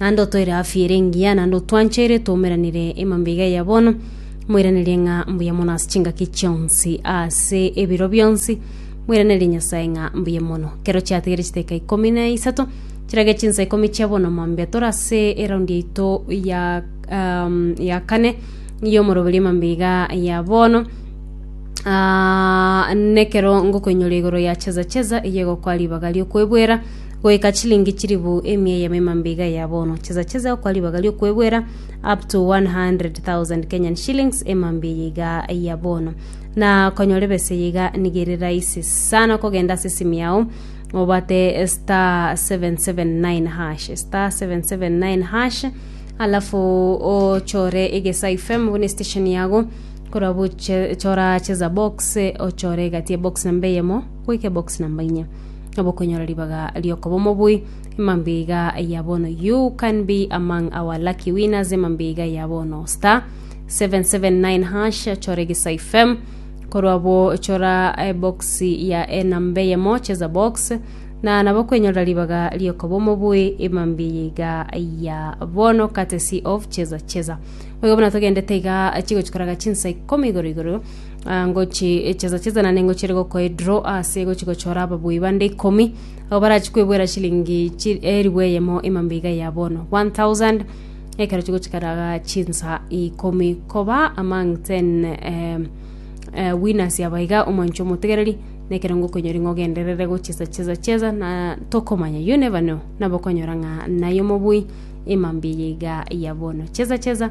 naende otoire afiire engiya, naende otwancheire twaumeranire emambia iga ya bono, moiranerie ng'a mbuya mono ase chingaki chionsi ase ebiro bionsi, moiranerie Nyasae ng'a mbuya mono. Kero chiatigire chidakika ikomi na isato chirage chinsa ikomi chia bono mambia tore ase eraundi yaito ya um, ya kane ya omoroberio mambia iga ya bono Ah, nekero ngokoinyora igoro ya cheza cheza eye egokwa ribaga riokwebwera goika chilingi chilifu emia ya memambe iga ya bono, chesa chesa gokora ribaga riokwegwera up to 100,000 Kenyan shillings emambe eye iga ya bono. Na konyora ebesa eye iga niga ere rahisi sana kogenda ase esimu yao obate star 779 hash star 779 hash alafu ochore egesa ifm buna station yago kora buche chora cheza box ochore egati ya box namba eyemo goika box namba inya Abokonyora ribaga riokoba omobui, emambiga ya bono you can be among our lucky winners emambiga ya bono star 779 hash chora egesa fm korwa bo chora eh, box ya enamba eyemo cheza box na nabo kwenyora ribaga riokoba omobui emambiga ya bono courtesy of cheza cheza boigo buna togendete iga chigochikoraga chinsa ikomi igoro igoro Ah, ngochi echesa chesa na ningo chiri gokoa edro ase gochi gochora ababui bande ikomi abo barachi kwebwera shilingi chi- eribu eyemo emambe iga ya bono 1000 ekero chigochikaraga chinsa ikomi koba among 10 eh, eh, winners aba iga omwancho omotegereri nekero ngokonyori ng'a ogenderere gochesa chesa chesa na tokomanya you never know nabo okonyora ng'a naye omobui emambe eye iga ya bono chesa chesa